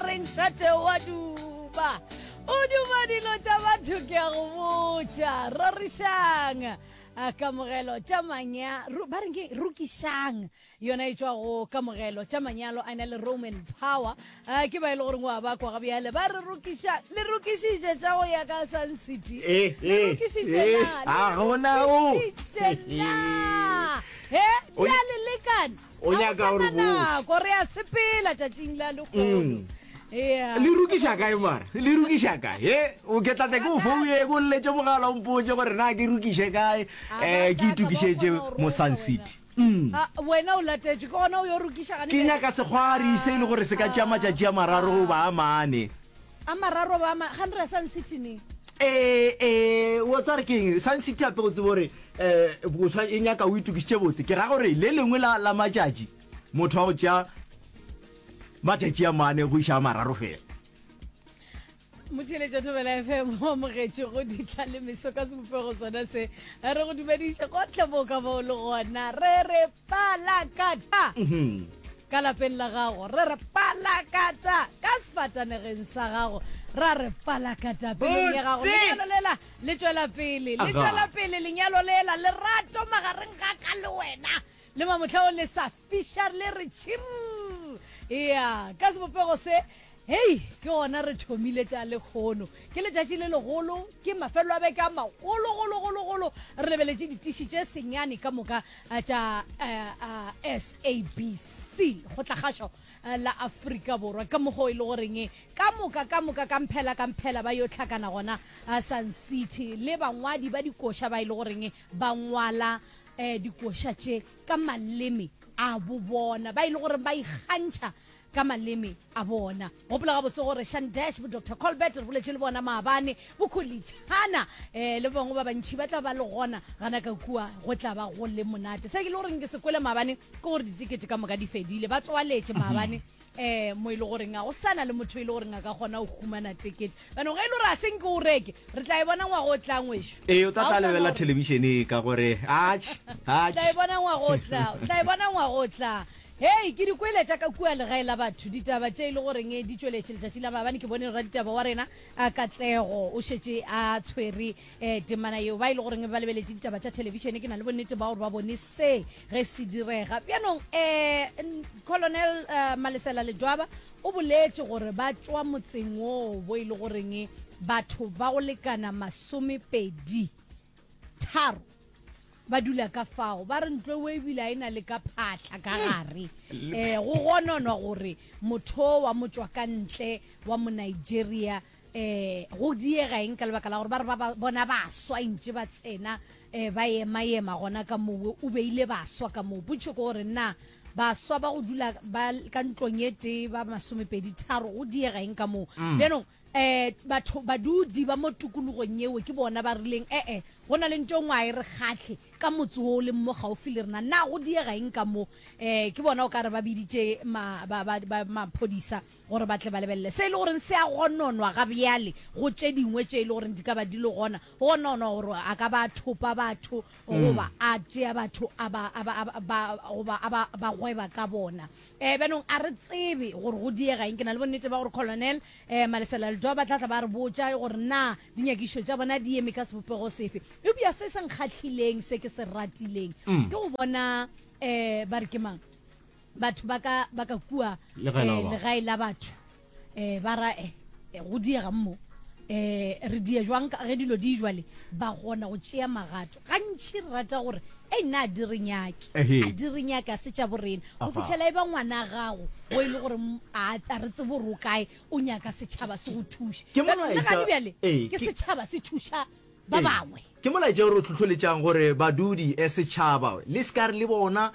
reng šate wa duma o duma dilo tša batho ke a go botša rorišang kamogelo tša manya ba reng ke rukišang yona e tšwa go kamogelo tša manyalo a na le roman power ke ba e le goreng wa bakwa ga bjale ba re rukiša le rukišitše tša go ya ka sun city le rukišitše na le rukišitše na he ya le lekane o nyaka gore botse re a sepela tšatšing la lekgolo mm. le rukiša kae mara le rukiša kae e o ke tlate ke o foune ko lletše mogala o mpotse gore na ke rukiše kae um ke itukišetše mosan city mm. ah, wena o latetše ke gona o yo rukiša ke nyaka segwari se e le gore se ka tšea matšatši a mararo goba a mane A mararo ba ma ga nre Sun City ne. Ee ee wo tsare ke eng Sun City ape go tsebo gore eh boswa e nyaka o itukišitše botse ke ra gore le lengwe la la matšatši motho wa go tšea matšatši a mane go iša a mararo fela. Motheletša Thobela FM o amogetše go ditla le meso ka sebopego sona se re go dumediša gohle mo ka bao le gona re re Palakata! Ka lapeng la gago, re re palakata! Ka sefatanegeng sa gago, ra re palakata! Pelong ya gago, lenyalo lela le tšwela pele, le tšwela pele lenyalo lela, lerato magareng ga ka le wena le mamohla o le sa fiša le re tšhirr! Ea, ka sebopego se, Hei, ke gona re thomile tša lekgono. Ke letšatši le legolo, ke mafelelo a beke a magolo, golo, golo, golo. Re lebeletše ditiši tše senyane ka moka eh, tša eh, eh, SABC go tla gašo eh, la Afrika Borwa, ka mokgo e le goreng eh, ka moka, ka moka, ka mphela, ka mphela ba yo tlhakana gona eh, Sun City le bangwadi ba dikoša ba e le goreng eh, ba ngwala eh, dikoša tše ka maleme a bobona ba e le gore ba ikgantšha ka maleme a bona. Gopola gabotse gore Shan Dash, bo Doctor Colbert, re boletše le bona maabane, bo Kholitšhana eh, le bangwe ba bantšhi ba tla ba le gona gana ka kua, go tla ba go le monate. Se ke le goreng ke se kwele maabane ke gore ditikete ka moka di fedile, ba tswaletše maabane eh mo e le goreng ga go sana le motho e le goreng a ka kgona go humana tekete bano ge e le gore a se nke o reke re tla e bona ngwago o tlang wešo ee o tla tla lebela telebišene ka gore atšh atšh tla e bona ngwago o tla tla e bona ngwago o tla Hei, ke di kwele tša ka kua legae la batho, ditaba tše e le goreng di tšweletše letšatši la maabane. Ke bone raditaba wa rena Katlego o šetše a tshwere temana yeo. Ba e le goreng ba lebeletše ditaba tša thelebišene, ke na le bonnete ba gore ba bone se ge se direga. Bjanong um Colonel Malesela Ledwaba o boletše gore ba tšwa motseng woo bo e le goreng batho ba go lekana masomepedi tharo, ba dula ka fao ba re ntlo o ebile a e na le ka phatlha ka gare um go gononwa gore motho wa motswa ka ntle wa mo nigeria um go diega eng ka lebaka la gore ba re ba bona baswa ntse ba tsena um ba ema ema gona ka mowe o beile baswa ka moo potso ke gore nna baswa ba go dula ba ka ntlong e tee ba masomepedi tharo go diega eng ka moo mm. bjanong eh batho badudi ba mo tukulogong yeo ke bona ba rileng ee go na le nto ngwa e re kgatlhe ka motse o le mo gaufi le rena na go diega eng ka mo eh ke bona o ka re ba biditše maphodisa gore ba tle ba lebelele se e le goreng se a gononwa ga bjale go tše dingwe tše e le goreng di ka ba di le gona go gononwa gore a ka ba thopa batho goba a tšea batho goba a ba gweba ka bona Eh, bjanong a re tsebe gore go diega eng ke na le bonnete ba gore colonel eh, malesela ledoa ba tlatla ba re botša gore na dinyakišo tša bona di eme ka sebopego sefe eupša se se nkgatlhileng se ke se ratileng mm. ke go bona um ba re ke mang batho ba ka kua eh, legae la batho eh ba ra eh, eh go diega mmo eh re die jwang ka ge dilo di jwale ba gona go tšea magato gantši re rata gore e nna a di re nyake Ehe. a di re nyake a se tša borena go Aha. fitlhela e ba ngwana a gago o e le gore m- a a re tsebo re o kae o nyaka setšhaba se go thuše Ke Jaanong le molaetša- gane bjale ee, ke ke- setšhaba se thuša ba Ee. bangwe Ke molaetša o re hlohleletšang gore badudi, setšhaba, le se ka re le bona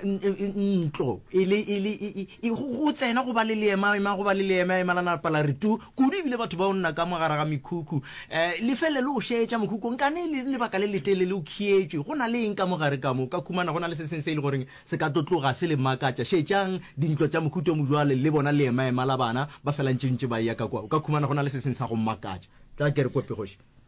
ntlo e le e go tsena go ba le leemaema, go ba le leemaema la napa la re tu kudu ebile batho ba onna ka mo gare ga mekhukhu. Le felele o šetša mokhukhung ka ne e le lebaka le letelele o khietšwe. Go na le eng ka mo gare ka mo? O ka khumana go na le se sengwe se e le goreng se ka tlo tloga se le makatša. Šetšang dintlo tša mokhuta o mo bjale le bona leemaema la bana ba felantšentše ba eya ka kwa. O ka khumana go na le se sengwe sa go makatša. Tla ke re kope kgoši.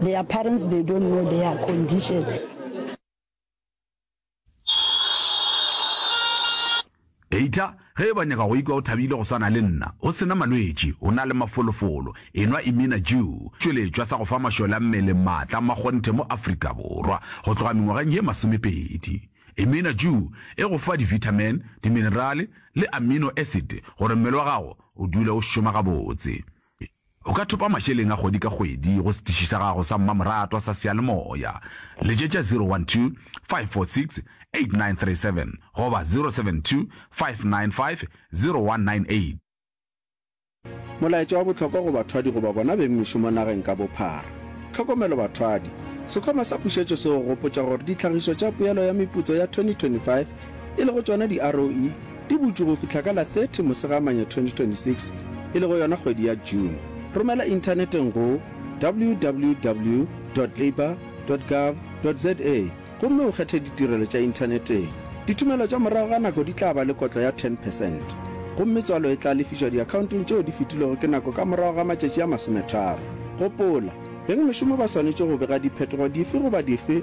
Their parents they don't know their condition. Eita, ge e ba nyaka go ikwa o thabile go swana le nna, o sena malwetši, o na le mafolofolo, enwa Imina Jew, tšweletšwa sa go fa mašole a mmele maatla a makgonthe mo Afrika Borwa go tloga mengwageng ye masomepedi. Imina Jew e go fa divitamin, diminerale le amino acid gore mmele wa gago o dule o šoma gabotse. O ka thopa mašeleng a kgwedi ka kgwedi go setiši sa gago sa mmamoratwa sa seyalemoya. Letšetša 012 546 8937 goba 072 595 0198. Molaetša wa bohlokwa go bathwadi goba bona beng mešomo nageng ka bophara. Tlhokomelo bathwadi! Sekhwama sa pušetšo se go gopotša gore ditlhagišo tša Poelo ya Meputso ya 2025, e lego tšona di-ROE, e butšwe go fihla ka la 30 Mosegamanya 2026, e lego yona kgwedi ya June. Romela inthaneteng go www dot labour dot gov dot za gomme o kgethe ditirelo tša inthaneteng. Dithomelo tša morago ga nako di tla ba le kotlo ya 10 percent, gomme tswalo e tla lefišwa diakhaontong tšeo di fetilwego ke nako ka morago ga matšatši a masometharo. Gopola, bengmešomo ba swanetše go bega diphetogo dife goba dife